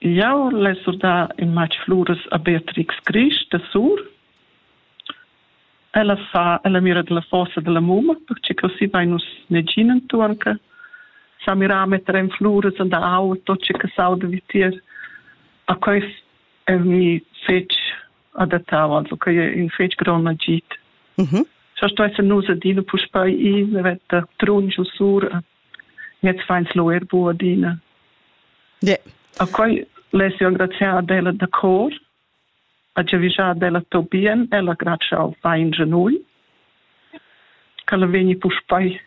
Jau l'hai surdà in matg fluras a Beatrix Grisch da Sur. Ella fa, ella mira da la fossa da la mumma, pertge così vain nus negin enturn che sa mirà a metter en fluras en da aua tot ce che sauda vitier. A quest è mi fetg adattau, also che è in fetg grond agit. Mm -hmm. Sto esser nus adina puspei i, vi trun giu sur a Jetzt feins lu ir bu adina. Yeah. A quei less jeu engraziar ad ella da cor, a giavischar ad ella tot bien, ella grazia al fein genui, ch'ella vegni puspei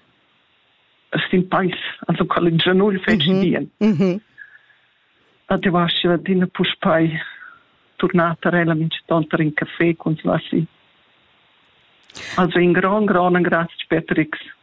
sin peis, also quella genui feci mhm. bien. Mhm. A ti vasci adina puspei turnata ella mincetonta in caffé con Slassi. Also in gran, gran grazie Patrix.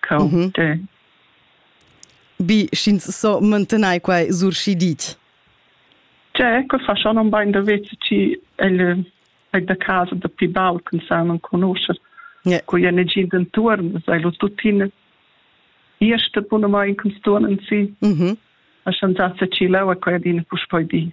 Cau, mhm. te. Bi, sch'ins so mantenai quai surschidit. C'è, che fa schon un bain da vezi ci el è da casa da pi baul con sa non conosce. Yeah. Con je negin d'entorn, sei lo tuttina erste buna mai in kunstturnen si. Mhm. A schon sa se ci laua quai dina puspoi di.